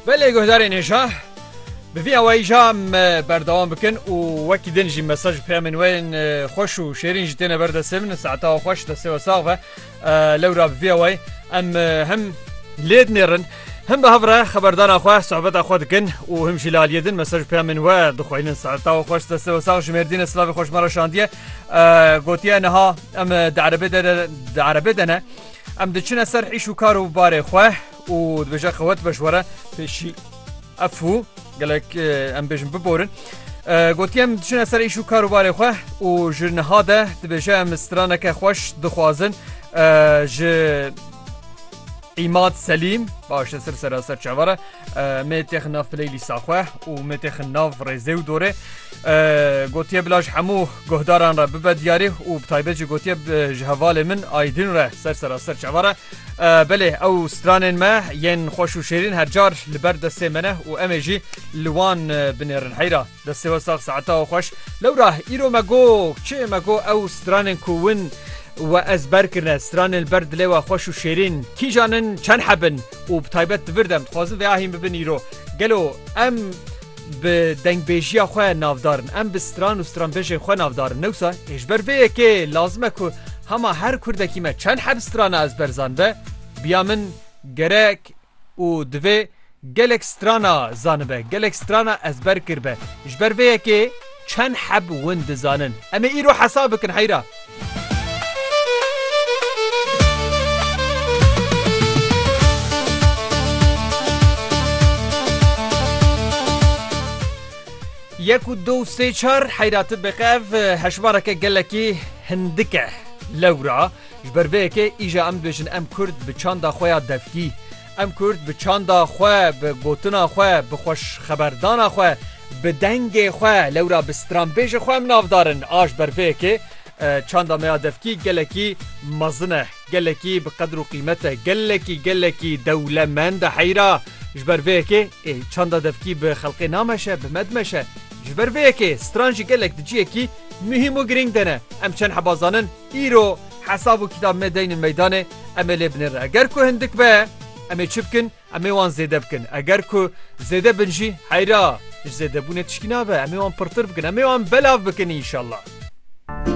Belê guhdarên hêja bi vî awayî ja me berdewam bikin û wekî din jî mesaj û peyamên wê yên xweş û şêrîn jî têne ber destê min saeta we xweş destê we sax be lewra bi vî awayî em hem lê dinêrin Him bi hevre xeberdana xwe sohbeta xwe dikin û him jî li aliyê din mesaj û peyamên we dixwînin saeta we xweş destê we sax ji mêrdîne silavê xweş me re şandiye gotiye niha em di erebê de de di erebê de ne Em diçine ser îş û kar û barê xwe û dibêje xewet beş were pêşî efû gelek em bêjin biborin. Gotiye em diçine ser îş û kar û barê xwe û ji niha de dibêje em straneke xweş dixwazin ji îmat selîm baş ser seraser çavara me têxin nav playlîsta xwe û me têxin nav rêzê û dorê gotiye bila ji hemû guhdaran re bibe diyarî û bi taybet jî gotiye ji hevalê min aydin re ser seraser çava re belê ew stranên me yên xweş û şêrîn hercar li ber destê me ne û em ê jî li wan binêrin heyra. Destê we sax saeta we xweş. Lewra îro me got çi me got ew stranên ku win we ez ber kirine stranên li ber dilê we xweş û şêrîn kîjan in çend heb in û bi taybet di vir de em dixwazin vê ahîn bibin îro gelo em bi dengbêjiya xwe navdar in em bi stran û stranbêjên xwe navdar in newsa ê ji ber vê yekê lazim e ku hema her kurdekî me çend heb strana ez berzan be biya min gerek Û divê gelek strana zanibe, gelek strana ezber kirbe. Ji ber vê yekê çend heb win dizanin? Em ê îro hesab bikin heyra. Yek û du û sê çar heyra tu biqev hejmareke gelekî hindik e. Lewra. Ji ber vê yekê îja em dibêjin em Kurd bi çanda xwe ya devkî, em Kurd bi çanda xwe, bi gotina xwe, bi xweşxeberdana xwe, bi dengê xwe lewra bi stranbêjê xwe em navdar in. A ji ber vê yekê çanda me ya devkî gelekî mezin e, gelekî bi qedir û qîmet e, gelekî gelekî dewlemend e heyra. Ji ber vê yekê ê çanda devkî bi xelqê nameşe, bi me dimeşe. Ji ber vê yekê stran jî gelek di cihekî muhîm û girîng de ne. Em çend heba zanin Îro hesab û kîtab me deynin meydanê em ê lê binêrin. Eger ku hindik be em ê çi bikin? Em ê wan zêde bikin. Eger ku zêde bin jî heyra ji zêdebûnê tiştî nabe. Em ê wan pirtir bikin. Em ê wan belav bikin înşallah.